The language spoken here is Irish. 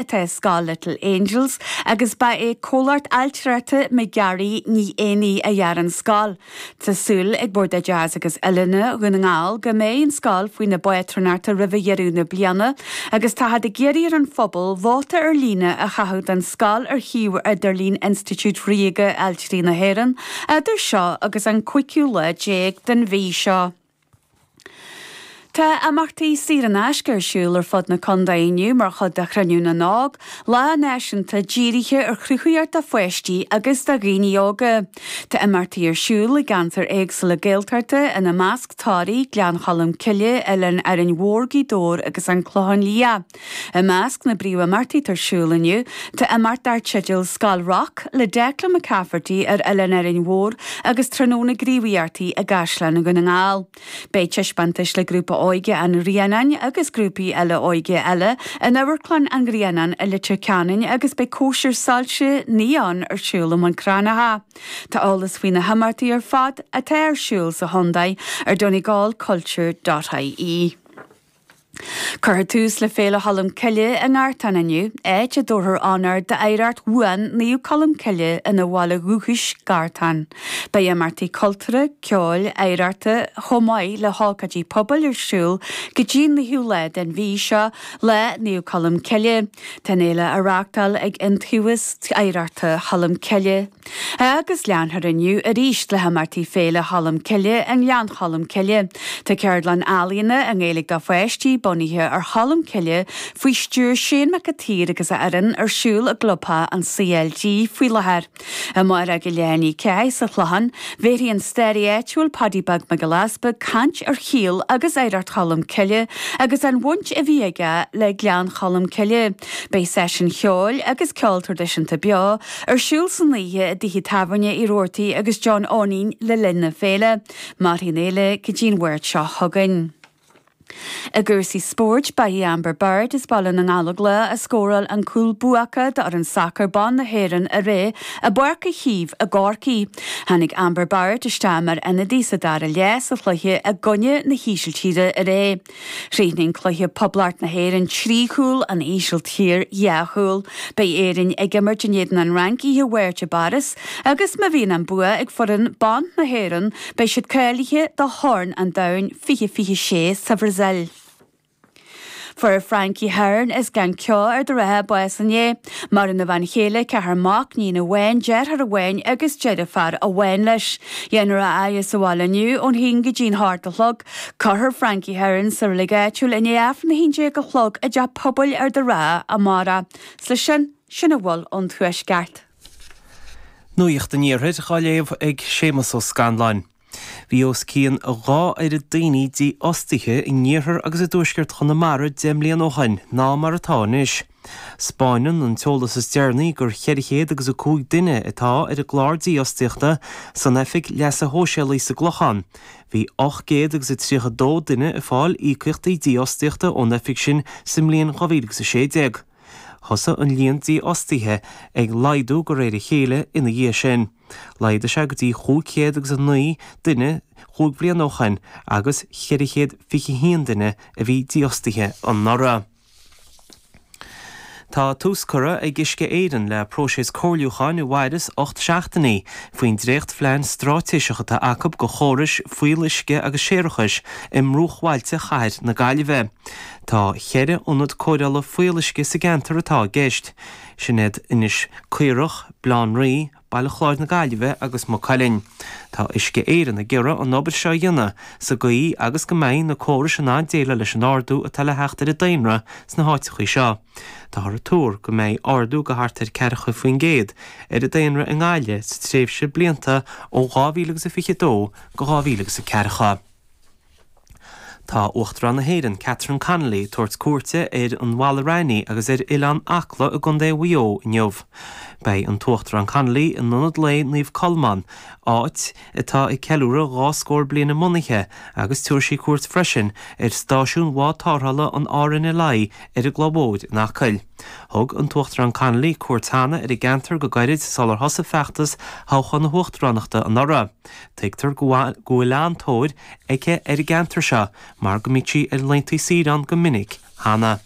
atá i scoil Little Angels agus ba é Comhlacht Ailtireachta McGarry Ní Éanaí a dhear an scoil. Tá súil ag Bord Oideachais agus Oiliúna Dhún na nGall go mbeidh an scoil faoina bpátrúnacht roimh dheireadh na bliana agus táthar ag iarraidh ar an phobal vóta ar líne a chaitheamh don scoil ar shuíomh idirlín Institiúid Ríoga Ailtirí na hÉireann idir seo agus an cúigiú lá déag den mhí seo. Tá imeachtaí saor in aisce ar siúl ar fud na contae inniu mar chuid de Chruinniú na nÓg, lá náisiúnta dírithe ar chruthaitheacht do pháistí agus do dhaoine óga. Tá imeachtaí ar siúl i gceantair éagsúla Gaeltachta, ina measc, Toraigh, Gleann Cholm Cille, Oileán Árainn Mhór, Gaoth Dobhair agus An Clochán Liath. I measc na bpríomhimeachtaí atá ar siúl inniu tá imeacht dar teideal Scoil Rock le Declan McCafferty ar Oileán Árainn Mhór agus tráthnóna gníomhaíochtaí i gCaisleán Dhún na nGall. Beidh taispeántais le Grúpa Óige an Ghrianáin agus grúpaí eile óige eile in Amharclann an Ghrianáin i Leitir Ceanainn agus beidh cóisir soilse Neon ar siúl i mBun Cranncha. Tá eolas faoi na himeachtaí ar fad atá ar siúl sa chontae ar Donegal Culture dot ie. Cuirfear tús le Féile Cholm Cille i nGartán inniu, áit a dtabharfar onóir d'oidhreacht bhuan Naomh Colm Cille ina bhaile dúchais, Gartán. Beidh imeachtaí cultúrtha, ceoil, oidhreachta chomh maith le hócáidí pobail ar siúl go dtí an naoú lá den mhí seo, Lá Naomh Colm Cille. Tá an fhéile á reáchtáil ag Iontaobhas Oidhreachta Cholm Cille. Agus leanfar inniu arís le himeachtaí Féile Cholm Cille i nGleann Cholm Cille. Tá ceardlann ealaíona i nGaeilge do pháistí bunaithe ar Cholm Cille faoi stiúir Shane Mac a tSaoir agus a fhoireann ar siúl i gclubtheach an CLG faoi láthair. I mBialann Uí Cheallaigh sa Chlochán, bhéarfaidh an staraí áitiúil Paddy Beag Mac Giolla Easpaig caint ar shaol agus oidhreacht Cholm Cille agus an bhaint a bhí aige le Gleann Cholm Cille. Beidh seisiúin cheoil agus ceol traidisiúnta beo, Ar siúl san oíche i dtithe tábhairne Uí Robhartaigh agus John Eoinín le linn na féile. Mairfidh an fhéile go dtí an Mháirt seo chugainn. I gcúrsaí spóirt, ba í Amber Barrett as Baile na nGallóglach a scóráil an cúl buacach d'fhoireann sacair ban na hÉireann aréir i bPáirc Uí Chaoimh i gCorcaigh. Tháinig Amber Barrett isteach mar ionadaí sa dara leath sa chluiche i gcoinne na hÍsiltíre aréir. Chríochnaigh an cluiche Poblacht na hÉireann trí chúl, an Ísiltír dhá chúl. Beidh Éirinn ag imirt in éadan an Fhrainc oíche Mháirt i bPáras agus má bhíonn an bua ag foireann ban na hÉireann beidh siad cáilithe do Chorn an Domhain 2026 sa Bhrasaíl. Fuair Frankie Herron as Gleann Ceo Ard an Rátha bás inné. Maireann a bhean chéile, ceathar mac, iníon amháin, deartháir amháin agus deirfiúr amháin leis. Déanfar a fhaire sa bhaile inniu ón haon go dtí an hocht a chlog. Cuirfear Frankie Herron sa reilig áitiúil i ndiaidh Aifreann 11 a chlog i dteach pobail Ard an Rátha amárach. 'S leis sin, sin a bhfuil ón Tuaisceart. Nuacht an Iarthair á léamh ag Séamus Ó Scanláin. Bhí os cionn a dhá oiread daoine dífhostaithe in iarthar agus i dtuaisceart Chonamara deich mbliana ó shin ná mar atá anois. 'Spáineann an t-eolas is deireanaí gur cheithre chéad agus a cúig duine atá ar an gclár dífhostaíochta san Oifig Leasa Shóisialaigh sa gClochán. Bhí ocht gcéad agus a tríocha dó duine ag fáil íocaíochtaí dífhostaíochta ón Oifig sin sa mbliain 2016. Thosaigh an líon dífhostaithe ag laghdú go réir a chéile ina dhiaidh sin. Laghdaigh sé go dtí chúig chéad agus a naoi duine chúig bhliana ó shin agus cheithre chéad fiche haon duine a bhí dífhostaithe anuraidh. Tá tús curtha ag Uisce Éireann le próiseas comhairliúcháin a mhairfeas ocht seachtainí faoin dréachtphlean stráitéiseach atá acu do chórais fuíolluisce agus séarachais i mbruachbhailte chathair na Gaillimhe. Tá cheithre ionad cóireála fuíolluisce sa gceantar atá i gceist, sin iad Inis Caorach, Baile Átha an Rí, Baile Chláir na Gaillimhe agus Maigh Cuilinn. Tá Uisce Éireann ag iarraidh an obair seo a dhéanamh sa gcaoi agus go mbeidh na córais in ann déileáil leis an ardú atá le theacht ar an daonra sna háiteachaí seo. Táthar ag tuar go mbeidh ardú go thart ar 40% ar an daonra i nGaillimh sa tréimhse blianta ó 2022 go 2040. Tá Uachtarán na hÉireann, Catherine Connolly ag tabhairt cuairte ar an Mhala Raithní agus ar Oileán Acla i gContae Mhaigh Eo inniu. Beidh an tUachtarán Connolly in Ionad Lae Naomh Colmán, áit atá ag ceiliúradh dhá scór bliain a mbunaithe agus tabharfaidh sí cuairt freisin ar Stáisiún Bhád Tárrthála an RNLI ar an gCloich Mhóir in Acaill. Thug an tUachtarán Connolly cuairt cheana ar an gceantar go gairid sular thosaigh feachtas thoghchán na hUachtaránachta anuraidh. Tuigtear go bhfuil an-tóir aici ar an gceantar seo mar go mbíodh sí ar laentaí saoire ann go minic cheana.